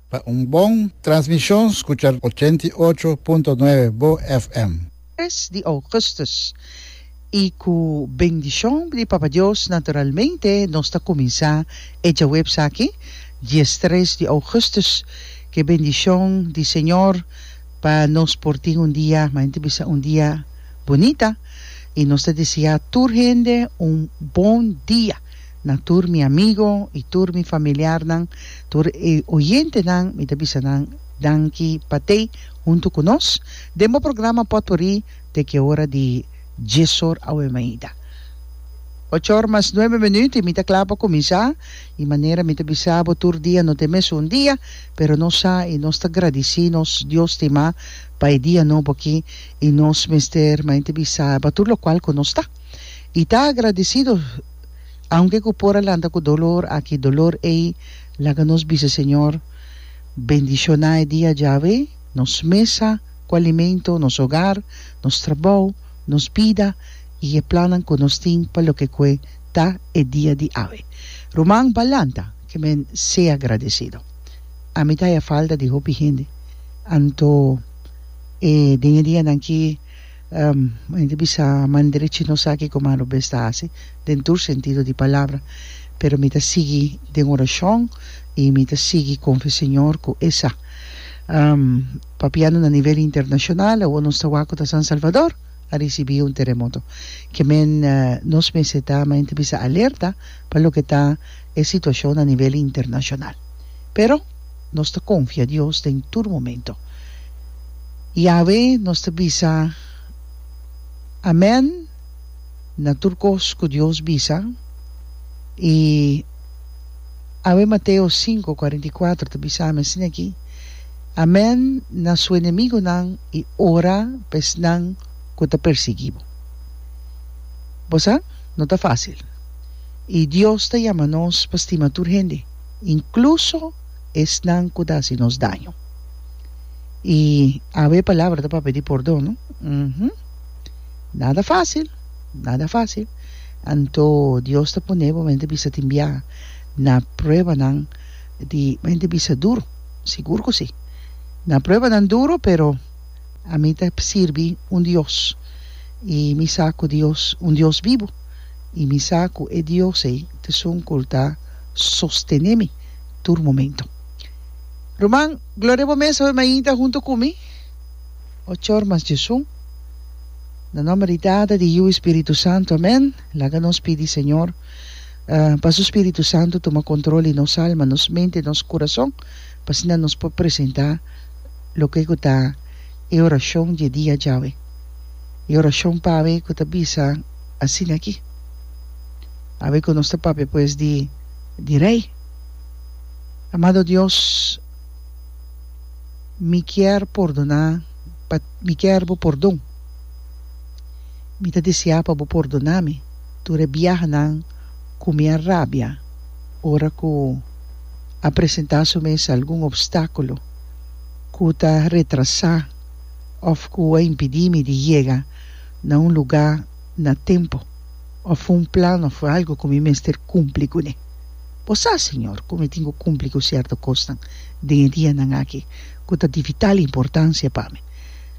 Pa un bon transmishon skucha ochenta i ocho punto nuebe Bo FM. Tres di Ougustus. I ku bendishon di Papa Dios naturalmente nos ta kuminsá e djaweps aki, diestres di Ougustus, ku e bendishon di Señor pa nos por tin un dia, mayormente bisa un dia bunita. I nos ta deseá tur hende un bon dia. Na tur mi amigo y tur mi familiarnan, tur e oyentenan mi ta bisa nan danki pa t'ei huntu cu nos den bo programa Potpourri te ki ora di djesor awe mainta ochor mas nuebe minuut y mi ta cla pa cuminsa y manera mi ta bisa bo tur dia no ta e mesun dia pero nos sa y nos ta gradici nos Dios stima pa e dia nobo aki y nos mester main ta bisa ba tur locual cu nos ta y ta agradicido Aunke ku por a lanta ku dolor, aki dolor ei laga nos bisa Señor bendishoná e dia djawe nos mesa ku alimento, nos hogar, nos trabou, nos bida i e plannan ku nos tin pa loke kue ta e dia di awe. Ruman ba lanta ke men sea agradesido. Ami ta haya falta di hopi hende, anto e den e dianan ki. Bai ta bisa man derechi nos sa kiko mas no bes ta hasi den tur sentido di palabra, pero mi ta sigui den orashon i mi ta sigui konfia Señor ku E sa. Papiando na nivel internashonal, awor nos ta wak ku ta San Salvador a risibí un teremoto. Ke men nos mester ta men ta bisa alerta pa loke ta e situashon na nivel internashonal. Pero. nos ta konfia Dios den tur momento. Yawe nos ta bisa Amèn na tur kos ku Dios bisa i awe Mateo sinku kuarenta i kuater ta bisa mi asin aki, Amèn na su enemigunan i ora pa esnan ku ta persiguí bo. Bo sa no ta fásil i Dios ta yama nos pa stima tur hende. inkluso esnan ku ta hasi nos daño. I awe e palabra ta pa pidi pordon, no? Uhumm. Nada fásil, nada fásil. Anto Dios ta pone bo, mi ta bisa tin bia, na pruebanan di, mi ta bisa duru, sigur ku si. Na pruebanan duru, pero ami ta sirbi un Dios, i mi sa ku Dios, un Dios bibu, i mi sa ku e Dios ei ta sunkultá. sostene mi tur momento. Ruman Gloria bo mes hoy mainta hunto cu mi ochor mas djesun na nomber di Tata di Hiu y Spiritu Santo amen laga nos pidi Señor pa su Spiritu Santo tuma control di nos alma nos mente nos curason pa asina nos por presenta loke cu ta e oracion dje dia djawe e oracion pawe cu ta bisa asina aki. Pasobra ku nos ta papia pues di di Rei. Amado Dios, mi kier pordoná pa mi kier Bo pordon. Mi ta deseá pa Bo pordoná mi tur e biahanan ku mi a rabia ora ku a presentá su mes algun opstákulo ku ta retrasá òf ku a impidí mi di yega na un lugá na tempu of un plan of algu ku mi mester kumpli kuné. Bo sa, Señor, ku mi tin ku kumpli ku sierto kosnan den e dianan aki ku ta di vital importansia pa mi.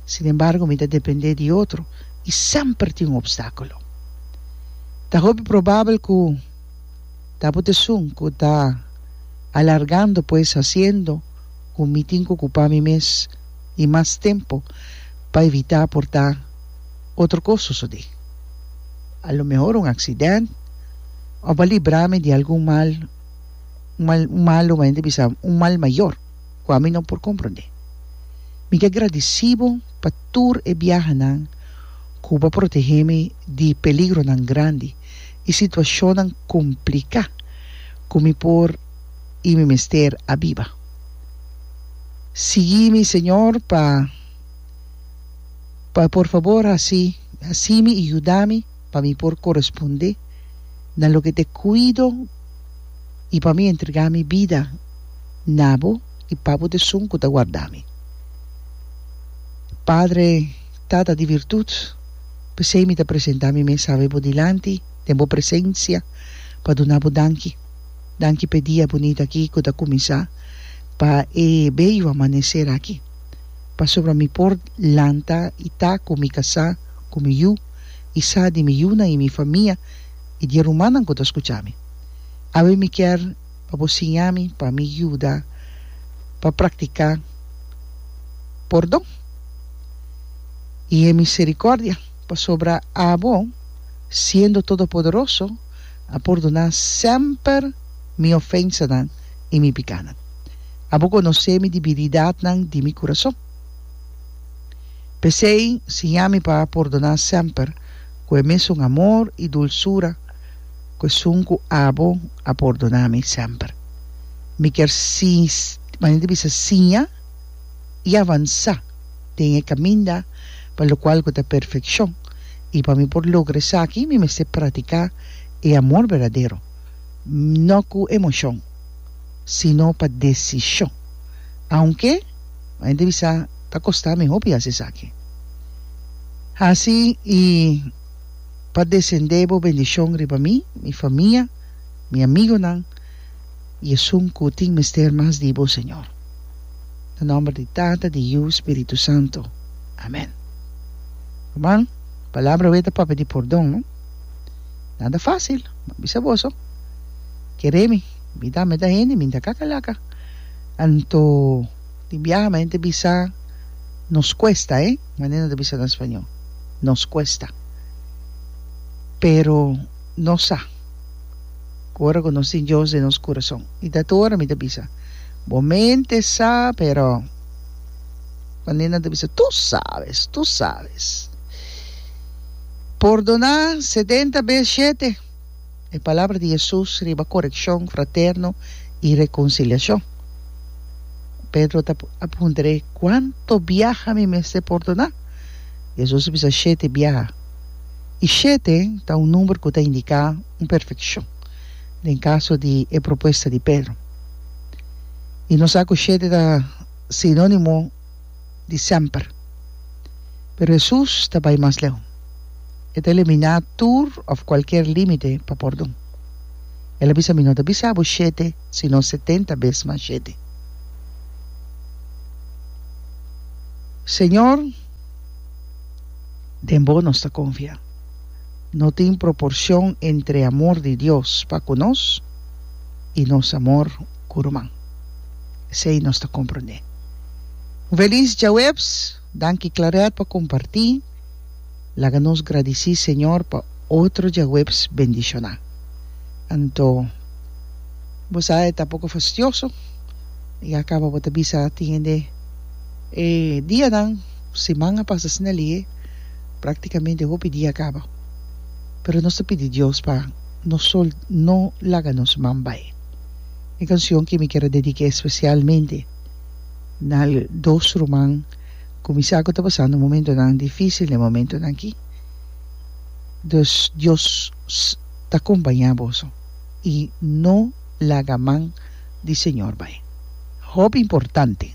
Sin embargo, mi ta dependé di otro i semper tin un opstákulo. Ta hopi probabel ku ta bo tesun ku ta alargando pues hasiendo ku mi tin ku okupá mi mes i mas tempu pa evitá por ta. otro kos sosodé. A lo mehor un aksident òf a libra mi di algun mal, un mal, un mal lo hende bisa un mal mayor ku ami no por komprondé. Mi ta gradisí bo pa tur e biahanan ku bo a protehé mi di peligronan grandi i situashonnan kompliká ku mi por i mi mester a biba. Sigui mi, Señor, pa. Pa por fabor hasi hasimi i yudami pa mi por korespondé na loke t'e kuido i pa mi entregá mi bida na bo i pa bo t'esun ku ta wardami. Padre, Tata di virtut, p'esei mi ta presentá mi mes awe bo dilanti den bo presensia pa duna bo danki. Danki p'e dia bunit aki ku ta kuminsá, pa e bello amaneser aki. pasobra mi por lanta i ta ku mi kasá ku mi yu i sa di mi yunan i mi famia i di e rumannan ku ta skucha mi. Awe mi kier pa bo siña mi pa mi yuda pa praktiká pordon i e miserikòrdia, pasobra abo, siendo todopoderoso, a pordoná semper mi ofensanan i mi pikánan. A bo conoce mi di biridatnan di mi curason. P'esey, siña mi pa pordona semper cu e mesun amor y dulsura cu esun cu abo a pordona mi semper. Mi kier manera di bisa siña y avansa den e caminda pa locual cu ta perfeccion, y pa mi por logra esaki mi mester pratica e amor berdadero, no cu emocion. sino pa desishon. Aunke un hende bisa, Ta kostá mi hopi hasi esaki. Hasi i pa desendé bo bendishon riba mi, mi famia, mi amigonan i esun ku tin mester mas di bo, Señor. Na nòmber di Tata, di Yu, Spiritu Santu. Amèn. Ruman, palabra wei ta papia di pordon, no? Nada facil, mi a bisa boso, kere mi, mi ta meta hende, mi ta kakalaka, anto tin biaha mi ta bisa nos cuesta eh, mane no ta bisa na spañó, nos cuesta, pero nos sa, ku ora ku nos tin Dios den nos kurason, i ta tur ora mi ta bisa, bo mente sa, pero mane nan ta bisa, tu sabes, tu sabes. Pordona sedenta bes shete. E palabra di Jesus riba korekshon fraterno i rekonsiliashon. Pedro ta a puntra e, Kuantu biaha mi mester pordona? Jesus a bisa, Shete biaha. I shete ta un number ku ta indiká un perfekshon, den kaso di e propuesta di Pedro. I no sa ku shete ta sinónimo. di semper. Pero Hesus ta bai mas leu. E ta eliminá tur òf kualker límite pa pordon. El a bisa, Mi no ta bisa bo shete, sino setenta bes mas shete. Señor, den bo nos ta konfia. No tin proporshon entre e amor di Dios pa ku nos i nos amor. ku ruman. Esei nos ta komprondé. Un felis djaweps, danki Claret pa kompartí, laga nos gradisí Señor pa otro djaweps bendishoná. Anto bo sa e ta poko fastioso i a kaba bo ta bisa tin hende e dianan, siman a pasa asina lihe, praktikamente hopi dia a kaba. Pero nos ta pidi Dios pa nos sol no laga nos man bai. E cancion ki mi kier a dedique especialmente na dos ruman cu mi sa cu ta pasando momentonan dificil n'e momentonan aki. Dus Dios ta compaña boso y no laga man di Señor bay. Hopi importante.